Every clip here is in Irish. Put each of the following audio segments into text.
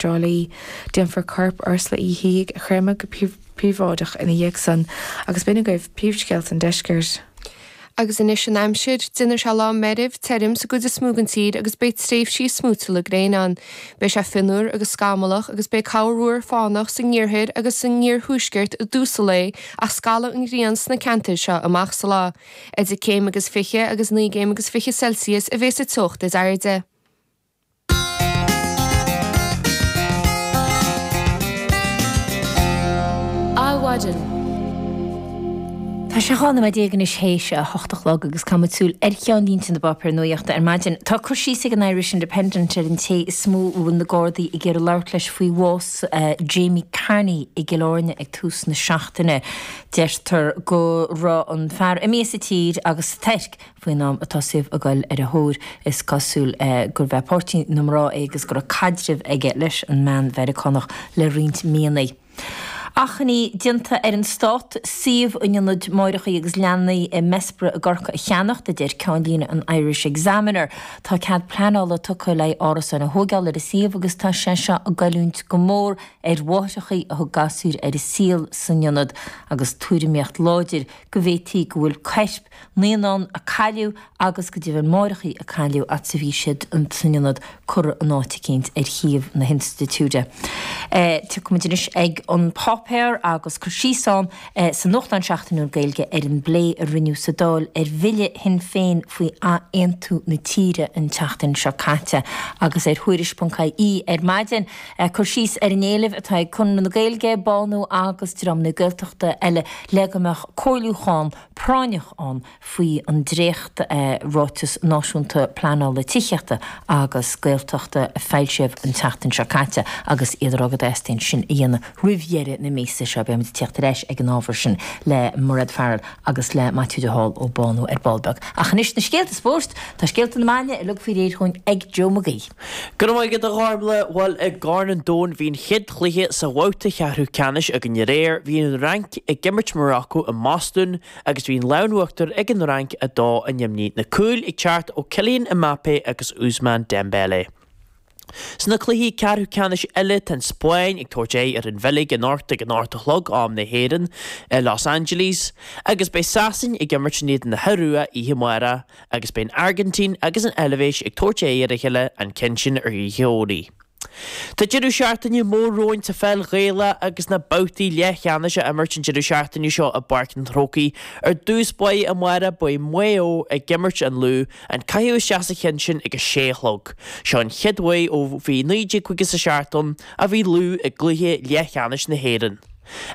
Tra Li. Déanfar corp Ursula Uí Shíthigh a chreimeadh go príobháideach ina dhiaidh sin agus b'in iad agaibh príomhscéalta an Deiscirt. Agus anois an aimsir. Déanfaidh sé lá meirbh tirim sa gcuid is mó den tír agus beidh tréimhsí smúitiúla gréine ann. Beidh sé fionnuar agus scamallach agus beidh corrmhúr fánach sa ngiarthar agus sa ngiarthuaisceart i dtús an lae ach scalfaidh an ghrian sna ceantair seo amach sa lá. Idir 3 chéim agus 20 agus 9 gcéim agus 20 Celsius a bheas sa teocht is airde. Adhmhaidin. Tá sé 12 nóiméad anois théis a hocht a chlog agus tá muid ag súil ar cheannlínte na bpáipéar nuachta ar maidin. Tá cur síos ag an Irish Independent ar an té is mó a bhfuil na Gardaí ag iarraidh labhairt leis faoi bhás Jamie Carney i gCill Airne ag tús na seachtaine. Deirtear go raibh an fear imithe as an tír agus sa Tuirc, Faoin am a dtosaíodar a ghoil ar a thóir, is cosúil gurb é páirtí na mná é agus go raibh caidreamh aige leis an mbean Mheiriceánach le roinnt míonna. Achainí déanta ar an Stát suíomh an ionad máithreachaí agus leanaí i mBessborough i gCorcaigh a cheannacht, a deir ceannlíne an Irish Examiner. Tá cead pleanála tugtha le haghaidh árasáin a thóigeáil ar an suíomh agus tá sé seo ag goilliúint go mór ar mháithreachaí a thug gasúir ar an saol san ionad agus tuairimíocht láidir go bhféadfadh go bhfuil coirp naíonán a cailleadh agus go deimhin máithreachaí a cailleadh an t-achar a bhí siad san ionad curtha in áit eicínt ar shuíomh na hinstitiúide. Tiocfaimid anois ag An Páipéar agus cur síos ann sa nuachtán seachtainiúil Gaeilge ar an bplé a rinneadh sa Dáil ar bhille Shinn Féin faoi ath-aontú na tíre an tseachtain seo caite agus ar Thuairisc.ie ar maidin cur síos ar an éileamh atá ag Conradh na Gaeilge, BÁNÚ agus dreamanna Gaeltachta eile le go mbeadh comhairliúchán. práinneach ann faoi an dréacht Ráiteas Náisiúnta Pleanála Tithíochta Tuaithe agus Gaeltachta a foilsíodh an tseachtain seo caite agus iad ag rá go dteastaíonn sin a dhéanamh roimh dheireadh na míosa seo. Beidh muid ag tíocht ar ais ag an ábhar sin le Mairéad Farrell agus le Maitiú de Hál ó BÁNÚ ar ball beag. Ach anois na scéalta spóirt! Tá scéalta na maidne uilig faoi réir chugainn ag Jó Mag Aoidh. Go raibh maith agat a Ghormfhlaith! Bhuel, i gCorn an Domhain, bhí an chéad chluiche sa bhabhta cheathrú ceannais againn aréir. Bhí an Fhrainc ag imirt Morocco i mBostún agus bhí an lámh in uachtar ag an Fhrainc 2 in éadan neamhní, na cúil ag teacht ó Kylian Mbappé agus Ousmane Dembélé. Sna cluichí ceathrú ceannais eile, tá an Spáinn ag tabhairt aghaidh ar an Bheilg anocht ag an ocht a chlog, am na hÉireann, i Los Angeles, agus beidh Sasain ag imirt in éadan na hIorua oíche amárach. agus beidh an Airgintín agus an Eilbhéis ag tabhairt aghaidh ar a chéile an ceann sin ar oíche Dhomhnaigh. Tá deireadh seachtaine mór romhainn sa pheil Ghaelach agus na babhtaí leathcheannais á imirt an deireadh seachtaine seo i bPáirc an Chrócaigh. Ar dtús beidh amáireach, beidh Maigh Eo ag imirt an Lú, an caitheamh isteach sa cheann sin ag a sé a chlog. Seo an chéad uair ó bhí 1957 a bhí Lú i gcluiche leathcheannais na hÉireann.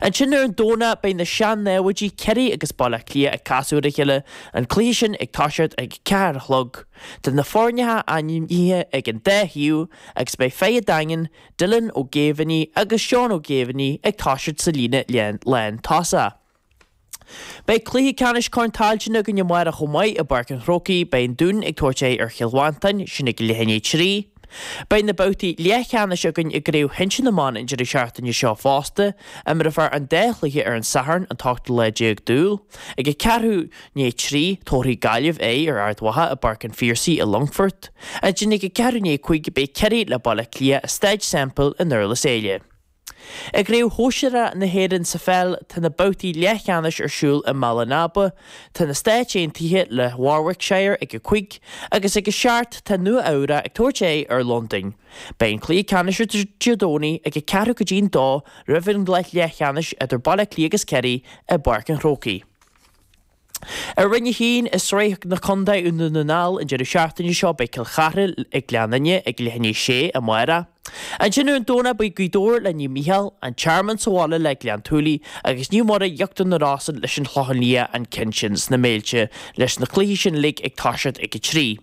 Ansin ar an Domhnach beidh na sean-námhaidí Ciarraí agus Baile Átha Cliath ag casadh ar a chéile, an cluiche sin ag toiseacht ag a ceathair a chlog. Tá na foirne ainmnithe ag an dá thaobh agus beidh fear an Daingin, Dylan Ó Géibheannaigh agus Seán Ó Géibheannaigh ag toiseacht sa líne lántosaigh. Beidh cluiche ceannais Corn Tailteann againn amáireach chomh maith i bPáirc an Chrócaigh, beidh an Dún ag tabhairt aghaidh ar Chill Mhantáin, sin ag leath i ndiaidh trí. Beidh na babhtaí leathcheannais againn i gCraobh Shinsir na mBan an deireadh seachtaine seo fosta, imreofar an dá chluiche ar an Satharn, an t-ochtú lá déag d'Iúil, ag a ceathrú i ndiaidh trí, tabharfaidh Gaillimh aghaidh ar Ard Mhacha i bPáirc an Phiarsaigh i Longfort, ansin ag a ceathrú i ndiaidh cúig beidh Ciarraí le Baile Átha Cliath i Staid Semple i nDurlas Éile. I gCraobh Shóisearach na hÉireann sa pheil, tá na babhtaí leathcheannais ar siúl i mBaile an Aba. Tá na Stáit Aontaithe le Warwickshire ag a cúig agus ag a seacht tá Nua-Eabhrac ag tabhairt aghaidh ar Londain. Beidh an cluiche ceannais ar Dé Domhnaigh ag a ceathrú go dtí an dó roimh an gcluiche leathcheannais idir Baile Átha Cliath agus Ciarraí i bPáirc an Chrócaigh. Ar Roinn 1, i Sraith na Contae Dhún na nGall, an deireadh seachtaine seo beidh Cill Chartha ag Gleann Fhinne ag leath i ndiaidh a sé amáireach. Ansin ar an Domhnach beidh Gaoth Dobhair le Naomh Micheál, An Tearmann sa bhaile le Gleann tSúilí agus Naomh Muire, Íochtar na Rosann leis an Chlochán Liath, an ceann sin sna Méilte leis na cluichí sin uilig ag toiseacht ag 3.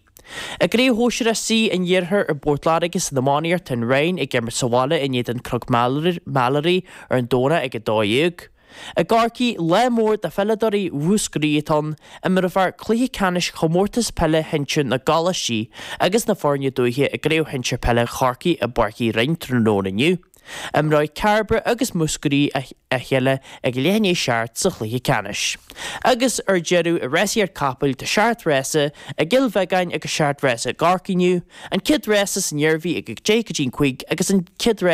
I gCraobh Shóisear C an Iarthair i bPort Láirge san iománaíocht tá an Rinn ag imirt sa bhaile in éadan Cnoc Mheilearaí ar an Domhnach ag 12. I gCorcaigh, lá mór do pheileadóirí Mhúscraí atá ann, imreofar cluiche ceannais Chomórtas Peile Shinsir na gColáistí agus na foirne dúiche i gCraobh Shinsir Peile Chorcaí i bPáirc Uí Rinn tráthnóna inniu. Imreoidh Cairbre agus Múscraí a chéile ag leath i ndiaidh a seacht sa chluiche ceannais, agus ar deireadh i rásaíocht capall tá seacht rása i gCill Bheagáin agus seacht rása i gCorcaigh inniu, an chéad rása san Iarmhí ag deich go dtí an cúig agus an chéad